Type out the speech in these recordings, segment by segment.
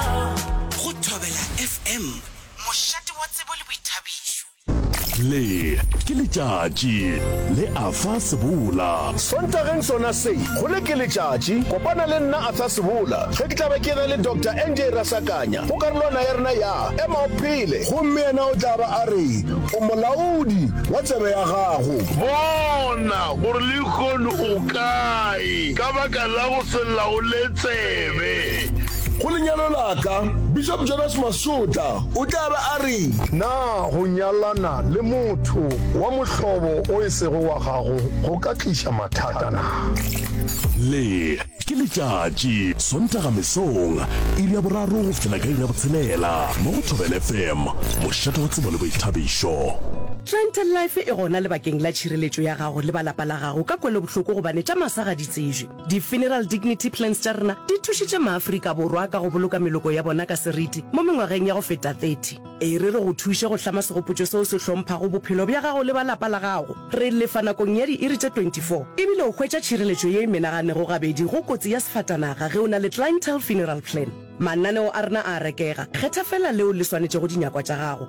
Go Thobela FM, mošate wa tsebo le boithabišo. Le ke letšatši le Arthur Sebola. Sontageng sona se, go Le ke letšatši, kopana le nna Arthur Sebola ge ke tla be ke na le Doctor NJ Rasakanya go karolwana ya rena ya Ema o Phele. Gomme yena o tla ba a re o molaodi wa tsebe ya gago. Bona gore lehono o kae ka baka la go se laole tsebe. Go lenyalo la ka, Bishop Jonas Masota o tla be a re. Na go nyalana le motho wa mohlobo o e sego wa gago go ka tliša mathata na? Le ke letšatši, Sontaga mesong, iri ya boraro go fihlela ka iri ya botshelela, mo go Thobel FM, mošate wa tsebo le boithabišo. Trent Life e gona lebakeng la tšhireletšo ya gago le ba lapa la gago ka kwelobohloko gobane tša masa ga di tsejwe. Di-funeral dignity plans tša rena di thušitše maAfrika Borwa ka go boloka meloko ya bona ka seriti mo mengwageng ya go feta 30. E re re go thuše go hlama segopotšo seo se hlomphago bophelo bja gago le ba lapa la gago. Re lefa nakong ya diiri tše 24, e bile o hwetša tšhireletšo ye e menaganego gabedi go kotsi ya sefatanaga ge o na le Clientele Funeral Plan. Mananeo a rena a a rekega, kgetha feela leo le swanetšego dinyakwa tša gago.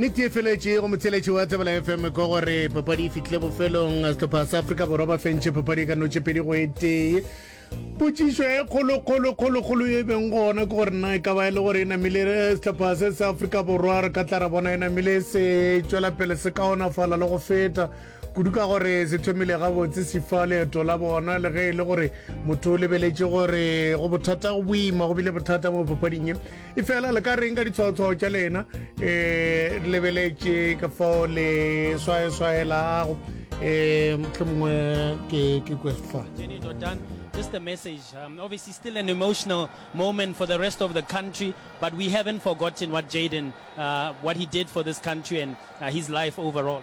nnete e feletše go motheletši wa tsebela fm ko gore papadi e fitlhile bofelong setlhopha sa afrika borwa ba fentšhe papadi e ka notše pedi go e tee potsišo e kgolokgolokgolokgolo e beng gona ke gore na e ka ba e le gore e namile eh, setlhopha se sa afrika borwa re ka tla ra bona e namile se tšwela pele se kaonafala le go feta Kudu ka gore se thomile gabotse se fa leeto la bona le ge e le gore motho o lebeletše gore go bothata go boima go bile bothata mo papading e e fela le ka reng ka ditshwaotshwao tša lena um lebeletše ka fao le swaeswaelago um motlho mongwe ke kwefa just a message. Um, obviously, still an emotional moment for the rest of the country, but we haven't forgotten what Jaden, uh, what he did for this country and uh, his life overall.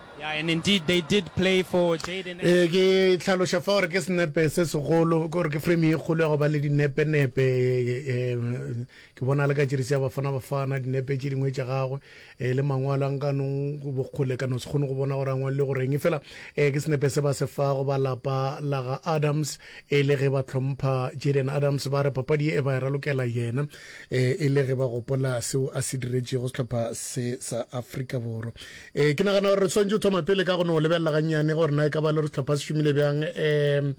Ee, ke hlaloša fa gore ke senepe se segolo, ke gore ke frame ye kgolo ya go ba le dinepe-nepe. Ke bona le ka Jersey ya Bafana Bafana, dinepe tše dingwe tša gagwe le mangwalo a nkanong bokgole ka no se kgone go bona gore a ngwalile go reng. Efela ke senepe se ba se fago ba lapa la ga Adams, E le ge ba hlompha Jillian Adams, ba re papadi ye e ba e ralokela yena e le ge ba gopola seo a se diretšego sehlopha se sa Afrika Borwa. Ke nagana gore re swantše go thoma pele ka go no lebelela gannyane gore na e ka ba le gore sehlopha se šomile bjang um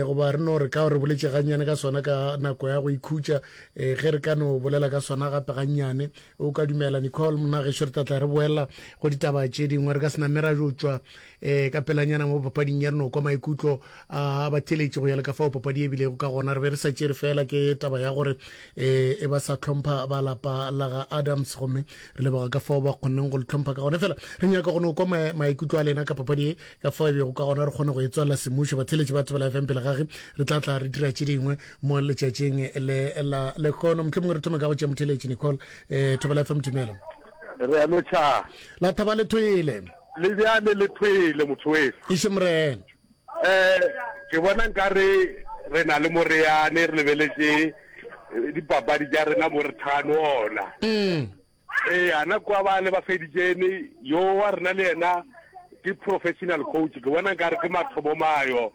goba re no re ka re boletše gannyane ka sona ka nako ya go ikhutša ge re ka no bolela ka sona gape gannyane. O ka dumela Nicole? Mna gešo re tla tla re boela go ditaba tše dingwe re ka se name ra jo tšwa eh ka pelanyana mo papading ya rena o kwa maikutlo a ba theletše go ya le ka fao papadi e bilego ka gona re be re sa tšere fela ke taba ya gore eh e ba sa tlhompha ba lapa la ga adams gomme re leboga ka fao ba kgonneng go le tlhompha ka gone fela re nyaka go no kwa maikutlo a lena ka papadi e ka fao e bego ka gona re kgone go e tswalela semušo ba theletše ba tsebela fm pele gage re tla tla re dira tše dingwe mo letšatšing le la lekgono motlho mongwe re thome ka go tšea motheletše nicole eh thobela fm dumela re a no tšhaa la thaba le thoele Le bjale le phele mothoweso. Ešo Morena. Eh, ke bona nkare re na le moreane re lebeletše dipapadi tša rena mo re thano ona. Mm. Eh, ana kwa ba le ba feditšene yo wa rena le yena ke professional coach ke bona nkare ke mathomo mayo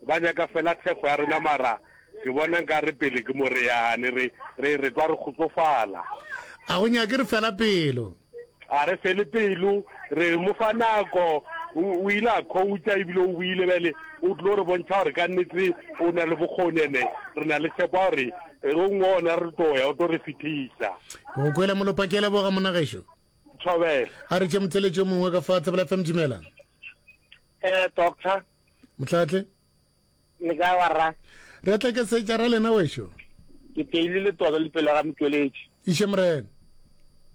ba nyaka fela thekgo ya rena mara ke bona nkare pele ke moreane re re re kwa re kgotsofala. A go nyake re fela pelo. A re fele pelo, re mo fa nako. O, o ile a khouta ebile o buile bjale. O tlo re bontšha gore ka nnete o na le bokgoni, ene re na le tshepo ya gore e go nngwe ona re tlo ya, o tlo re fetisa. Ke go kwele molopa, ke a leboga monna gešo. Thobela. A re tše motheletši yo mongwe ka fa Tsebela FM, dumela. Eh, doctor. Mohlatle. Le ka wa ra? Re a tlekesetša ra lena wešo. Ke teile le tobe le pelo ga motšweletši. Iše Morena.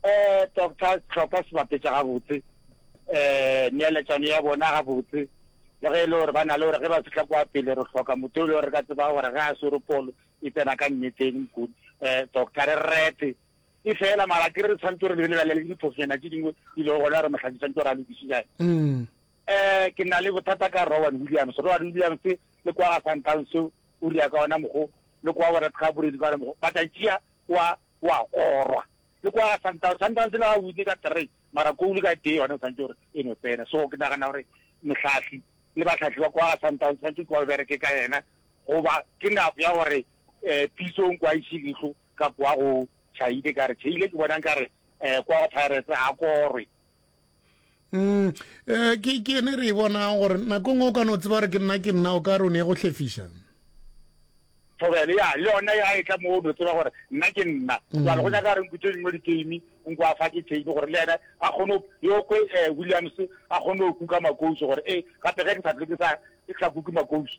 Eh, doctor Tlhopha sebapetša gabotse. Eh, neeletšano ya bona gabotse. Le ge e le gore ba na le gore ge ba fihla kwa pele re hloka motho yo le gore ka tseba gore ge a swere polo e tsena ka nneteng mokudi. Eh, doctor re rete. E fela mara ke re tshwanetse re lebelelale le diphosonyana tše dingwe di lego gona re mohlakisanto ra lokišetša. Mm. Ee, ke na le bothata ka Rowan Williams. Rowan Williams le kwa ga Sundowns o ria ka ona mokgo, le kwa go Red Gaboredi ka ona mokgo, but a tšea wa wa korwa le kwa ga Sundowns. Sundowns le ga wine ka three, mara goal ka tee yone o santse gore e no tsena. So ke nagana gore mohlahli le bahlahli ba kwa ga Sundowns santse kwa bereke ka yena, goba ke nako ya gore um Pitsong kwa iše leihlo ka kwa go Chaile, ka re Chaile ke bonang ka re um kwa go Pirates ga korwe. mm eh, ke ke ene re e bonang gore nako ngwe o ka no tseba gore ke nna ke nna o ka re o ne ya go hlefiša thobele ya le yona ya e tla mo o no tseba gore nna ke nna mm. jalo go nyaka re nkutse dingwe diteimi nko a fa ke teimi gore le ene a kgone yo kwe eh, williams a kgone go kuka makouso gore e eh, gape ge ke sa tle ke sa kuke makouso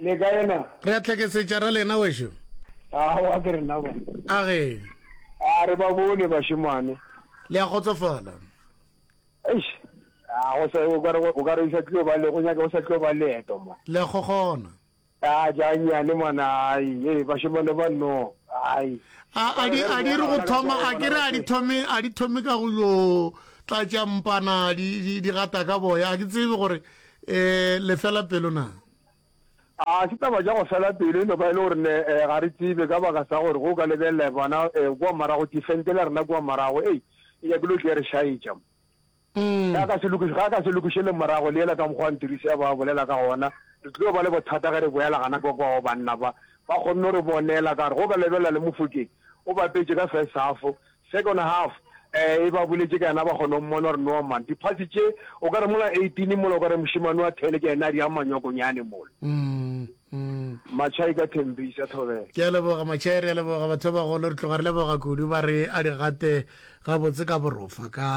Le kae na? Re a hlakesetša ra lena wešo. Aowa ke rena ba. A ge. A re ba bone bašemane. Le a kgotsofala? Eish, a go sa o ka re o ka re sa tlo ba le go nyaka o sa tlo ba leeto mo. Le a gogona? A ja nyane mwana ai e bašemane ba no ai. A a di a di re go thoma a ke re a di thome a di thome ka go yo tlatša mpana di di gata ka boya a ke tsebe gore eh lefela pelo na. A se taba tša go fela pelo e no ba e le gore ne eh, ga re tsebe ka baka sa gore go ka lebelela bona eh, kua morago tifente la rena kua morago ei e nyakile tle re šaetša mm. ga ka se lokiše ga ka se lokiše le morago le ela ka mokgwa ntirisi ya ba bolela ka gona re tlile ba le bothata ge re boela gana kwa kwa banna ba ba kgonne re bonela ka re go ka lebelela le mofokeng o bapetše ka first half Second half e ba boletše ka yena ba kgona go mmona gore no man diphasi tše o ka re mola 18 mola o ka re mošemane wa thele ke yena a di a manyokonyane mola matšhai ka thembisa thobela ke a leboga matšhai re a leboga batho ba bagolo re tloga re leboga kudu ba re a di gate gabotse ka borofa ka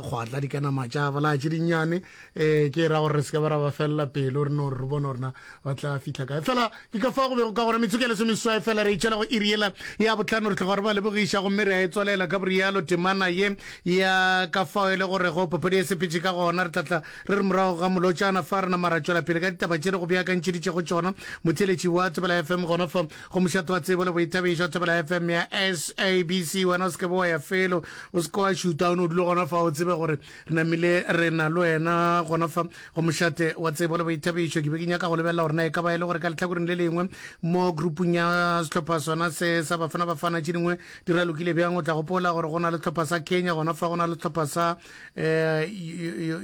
kgwatla di ka nama tša bolaatše dinnyane ee ke ra gore re se ka ba ra ba felela pelo re no re bone gorena ba tla fitlha kae fela ke ka fa go bego ka gona metsotso ya lesomeswai fela re itšhela go iri yela ya botlhano re tlhoga gore ba lebogiša gomme re a e tswalela ka borialo temana ye ya ka fao e le gore go papadi ya sepetše ka gona re tlatla re re morago ga molotšana fa re nama ra tšwela pele ka ditaba tše re go beakantšheditšego tšona motheletši wa thobela fm gona fa go mošato wa tsebo le boithabišo wa thobela fm ya sabc wena o se ke bo wa ya felo o se ke wa šuta o ne o dule gona fa o tsebe gore Re namile re na le wena gona fa go mošate wa tsebo le boithabišo. Ke be ke nyaka go lebelela gore na e ka ba e le gore ka lehlakoreng le lengwe mo grupung ya sehlopha sona se sa Bafana Bafana tše dingwe di ra lokile bjang. O tla gopola gore go na le sehlopha sa Kenya gona fa go na le sehlopha sa um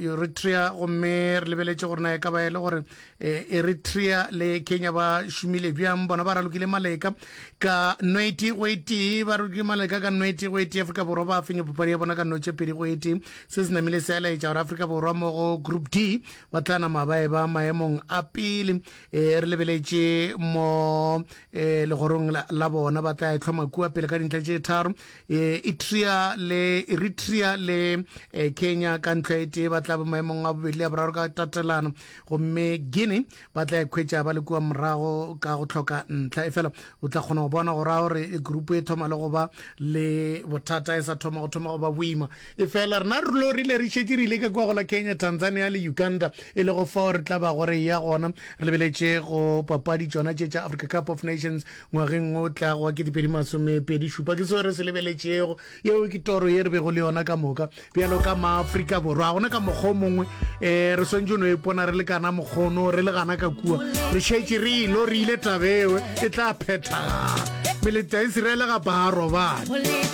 Eritrea gomme re lebeletše gore na e ka ba e le gore E, eritrea le kenya ba šomile bjang bona ba ralokile maleka ka nweti go etee ba ralokile maleka ka nweti go etee afrika borwa ba fenya papadi ya bona ka notše pedi go etee se se namile se elaetša gore afrika borwa mo go group d ba tla nama ba e ba maemong a pele e re lebeletše mo e, legorong la bona ba tla etlhoma kua pele ka dintlha tše tharo e, etrea le eritrea le kenya ka ntlha etee ba tla ba maemong a bobedi le ya boraro ka tatelano gomme guinea ba tla ekhwetša ba le kua morago ka go tlhoka ntlha e fela o tla kgona go bona go raya gore grupu e thoma le go ba le bothata e sa thoma go thoma go ba boima e fela rena re lo rile re šetse re ile ka kua go la kenya tanzania le uganda e le go fao re tla ba gore ya gona re lebeletše go papadi tšona tše tša africa cup of nations ngwageng o tlago wa ketepeedi masomepedi šupa ke seo re se lebeletšego yeo ke toro ye re bego le yona ka moka bjalo ka maaforika borwa ga gona ka mokgwa o mongwe um re swantse no epona re le kana mokgono re le gana ka kua re šetše re elo re ile tabewe e tla phethagala meletanse re elega baarobane